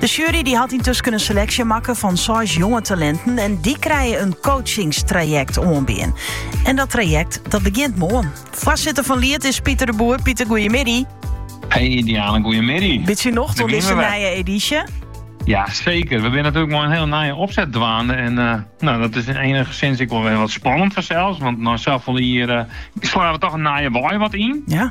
De sjuery die hat yntusken in seleksje makke fan seis jonge talinten en dy krije in coachingstrajekt oanbean. En dat trajekt dat begjint moarn. Foarsitter fan Liet is Pieter de Boer. Pieter, goeiemiddei. Hé Diane, goeiemiddei. Bitsje nocht oan deze nije edysje? Ja, zeker. We binne natuerlik mei in hiel nije opset dwaande. En eh, nou, dat is enigsins ek wol wer wat spannend fansels. Want nei safolle jier uh, slaan we toch in nije wei wat yn. Ja.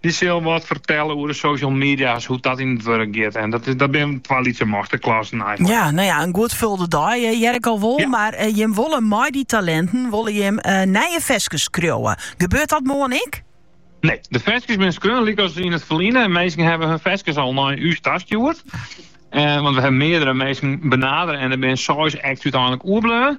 Dy sil wat fertelle oer de social media's, hoe't dat yn it wurk giet. En dat, dat binne twa lytse masterklassen eigenlik. Ja, no ja, in goed folde dei eh, hear ik al wol. Mar eh, jim wolle mei dy talinten wolle jim eh, nije ferskes skriuwe. Gebeurt dat moarn ek? Nee, de ferskes binne skreaun lykas yn it ferline. En minsken hawwe hun ferskes al nei ús tastjoerd. Eh, want we hawwe meardere minsken benadere en der binne seis acts úteinlik oerbleaun.